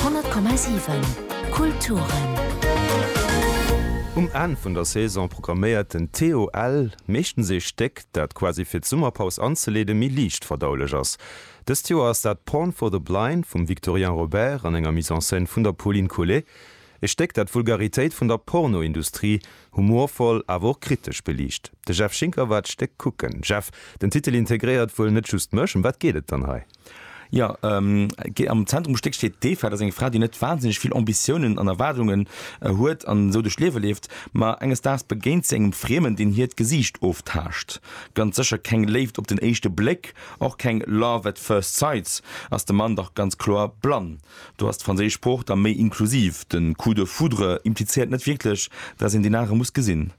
100,7 Kulturen. Um Enn vun der Saison programméiert den TOL meeschtens ee Stéck, dat quasi fir d'Summerpaus anzeleeden, méi liicht verdaulech ass. Dëst Joer ass dat Porn for the Blind vum Victorien Robert an enger Mise en scène vun der Pauline Collet. E Stéck, dat d'Vulgaritéit vun der Pornoindustrie humorvoll, awer och kritesch beliicht. De Jeff Schinker war d'Stéck kucken. Jeff, den Titel integréiert wuel net just mech. Ëm wat geet et dann hei? Jo, am Zentrum vum Stéck steet d'Eva. Dat ass eng Fra, déi net wahnsinneg vill Ambitiounen an Erwaardungen huet an esou duerch d'Liewe leeft. Ma enges Daags begéint si engem Friemen, deen hiert Gesiicht oftaascht. Ganz sécher keng Léift op den éischte Bléck, och keng Love at first sights, ass de Mann dach ganz kloer blann. Do ass d'franséisch Sprooch da méi inklusiv. De coup de foudre implizéiert net wierklech, dass een deen anere muss gesinn.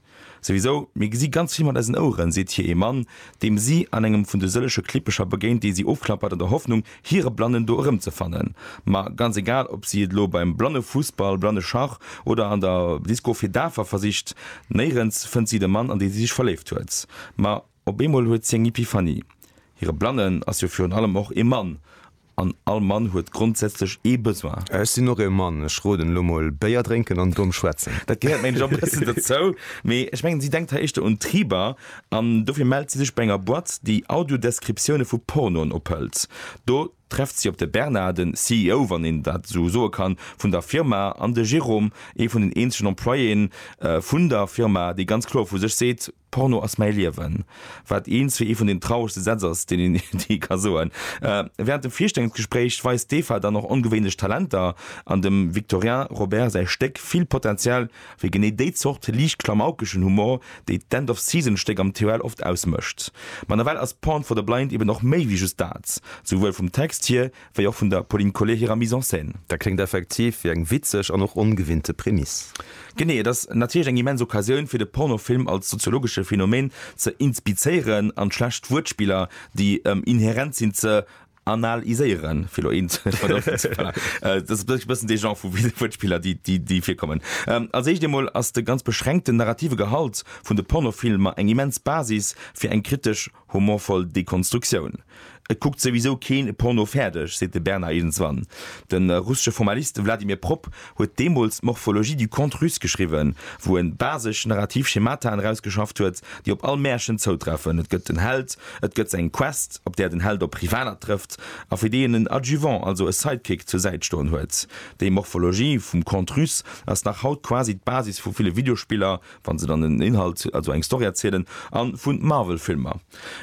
Souwisou, mir gesi ganz vill mat eisen Oueren, seet hir ee Mann, deem si an engem vun de sëllege Klippecher begéint, déi si ofklappert an der Hoffnung, hire Blannen do erëmzefannen. Ma ganz egal, ob si et elo beim Blannefussball, Blanneschach oder an der Disco fir Dafer versicht, néirens fënnt si de Mann, an dee si sech verléift huet. Ma. Op eemol huet si eng Epiphanie, Hire Blannen ass jo virun allem och ee Mann, an all Mann huet grondsätzlech ee Besoin. Ech sinn och ee Mann, ech roden elo mol, Béier drénken an domm schwätzen. Dat gehéiert, mengen ech, och e bëssen dozou, mee ech mengen, si denkt hei éischter un Triber, an dofir mellt si sech bei enger Boîte, déi Audio-Descriptioune vu Pornoen ophëlt. Do trefft si op de Bernard, den CEO, wann een dat esou soe kann, vun der Firma, an de Jérôme, ee vun den eenzegen Employéen vun der Firma, dee ganz kloer vu sech seet, Porno ass mäi Liewen, wat eens fir ee vun den trauregste Sätz ass, deen een jee ka soen. Wärend dem Virstellungsgespréich weist d'Eva dann och ongewéinlech Talenter an dem Victorien Robert säi Stéck vill Potenzial fir genee déi Zort liicht klamaukeschen Humor, déi d'End-of-Season-Stéck am TOL oft ausmécht. Ma nawell ass Porn for the Blind eben och méi wéi just dat, souwuel vum Text hier wéi och vun der Pauline Collet hirer Mise en scène. Dat kléngt effektiv wéi eng witzeg an och ongewinnte Prämiss. Genee, et ass natierlech eng immens Occasioun, fir de Pornofilm als soziologesche Phänomen ze inspizéieren an d'schlecht Wuertspiller, déi ëm inherent sinn, ze anal-iséieren, fir elo eent vun der Offer ze huelen. Dat ass e bëssen dee Genre vu Wuertspiller, déi virkommen. Als éischt eemol ass de ganz beschränkten narrative Gehalt vun de Pornofilmer eng immens Basis fir eng kritesch. Humorvoll Dekonstruktioun. Et kuckt souwisou keen e Porno fäerdeg, seet de Bernard iergendswann. De russesche Formalist Vladimir Propp huet deemools d'Morphologie du conte russe geschriwwen, wou en basesch narrativ Schemataen erausgeschafft huet, déi op all Märchen zoutreffen, et gëtt en Held, et gëtt eng Quest, op där den Held op Rivaler trëfft a fir déi en en Adjuvant, also e Sidekick, zur Säit stoen huet. Déi Morphologie vum Conte russe ass nach haut quasi d'Basis vu ville Videospiller, wann se dann en Inhalt, also eng Story erzielen, an vu Marvel-Filmer.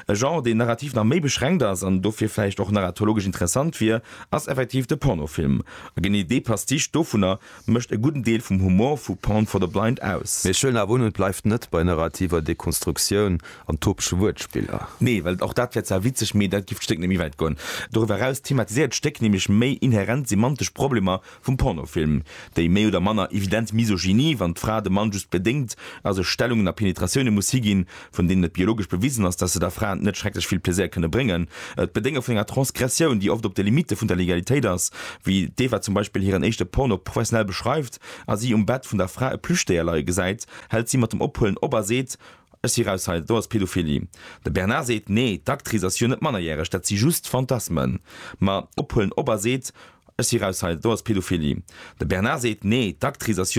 E Genre, deen narrativ nach méi beschränkt ass an dofir vläicht och narratologesch interessant wier, ass effektiv de Pornofilm. A genee dee Pastiche dovunner mécht e gudden Deel vum Humor vu Porn for the Blind aus. Mee schwéieren awer un, et bleift net bei narrativer Dekonstruktioun an topege Wuertspiller. Nee, well och dat wär zwar witzeg, mee dat giff d'Stéck net méi wäit goen. Doriwwer eraus thematiséiert d'Stéck nämlech méi inherent semantesch Problemer vum Pornofilm, déi méi oder manner evident Misogynie, wann d'Fra dem Mann just bedéngt a sech Stellungen a Penetratioune muss higinn, vun deenen et biologesch bewisen ass, datt se der Fra net schrecklech vill Plaisir kënne bréngen, d'Bedénge vun enger Transgressioun, déi oft op de Limitte vun der Legalitéit ass, wéi d'Eva zum Beispill hiren éischte Porno professionell beschreift a si um Bett vun der Fra e Plüschdéier leie gesäit, hält si mat dem Ophuelen op a seet, Ech si raus hei, do ass Pedophilie. De Bernard seet, Nee, d'Actrice ass jo net mannerjäreg, dat si just Fantasmen. Ma ophuelen op a seet, Ech si raus hei, do ass Pedophilie. De Bernard seet, Nee, d'Actrice ass jo.